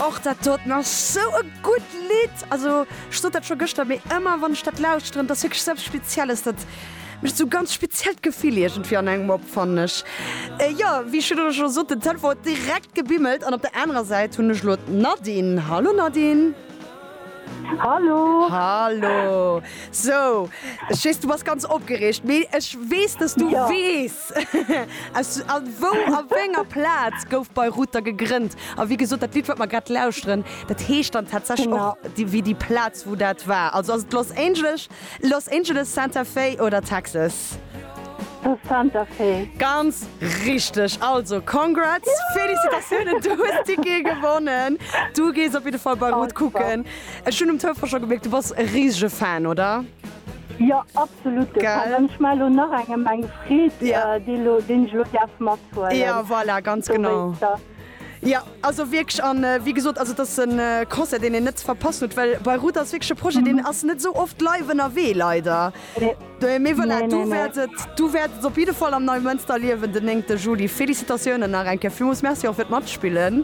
Och dat dot nach sou e gudd Lidd! Also ech sot dat scho gëschter, mee ëmmer wann ech dat lauschteren, dat ass wierklech eppes Spezielles, dat mécht sou ganz speziellt Gefill iergendwéi an engem op, fannen ech. Jo, wéi ech virun scho sot, den Telefon huet direkt gebimmelt an op der anerer Säit hunn ech elo d'Nadine. Hallo Nadine! Hallo! Hallo! Sou, ech weess du bass ganz opgereegt, mee ech weess, dass du weess, Plaz? Aus wou a wénger Plaz gouf Bayreuther gegrënnt? A wéi gesot, dat Lidd, wat mer grad lauschteren, dat heescht dann tatsächlech och wéi déi Plaz, wou dat war. Also ass et Los Angeles, Los Angeles, Santa Fe oder Texas? Santa Fe. Ganz richteg! Also congrats, Félicitatiounen, du hues d'Tickete gewonnen. Du gees op jidde Fall Bayreuth kucken. Ech hunn um Telefon scho gemierkt, du bass e risege Fan, oder? Jo absolut ech mar lo nach engem eng Freet déi lo deen ech lo däerf mat huelen. Jo voilà ganz genau. Jo also wierklech an wéi gesot also et ass e Concert deen een net ze verpassen huet, well Beirut ass wierklech e Projet deen ass net sou oft live ënnerwee leider. Mee voilà du wäert et du wäert et op jidde Fall am Neimënster erliewen den 9 Juli. Félicitatiounen nach eng Kéier. Villmools Merci och fir d'Matspillen.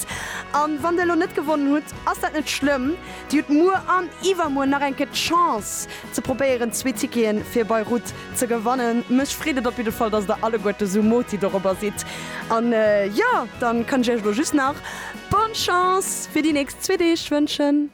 Respekt. An wann der elo net gewonnen hutt, ass dat net schlëmm. Dir hutt muer an iwwermuer nach eng Kéier d'Chance ze probéieren zwee Ticketen fir Beirut ze gewannen. Mech freet et op jidde Fall, dass der alleguerte sou moti dorobber sidd. An jo, dann kann ech iech elo just nach Bonne Chance fir déi nächst zwee Deeg wënschen.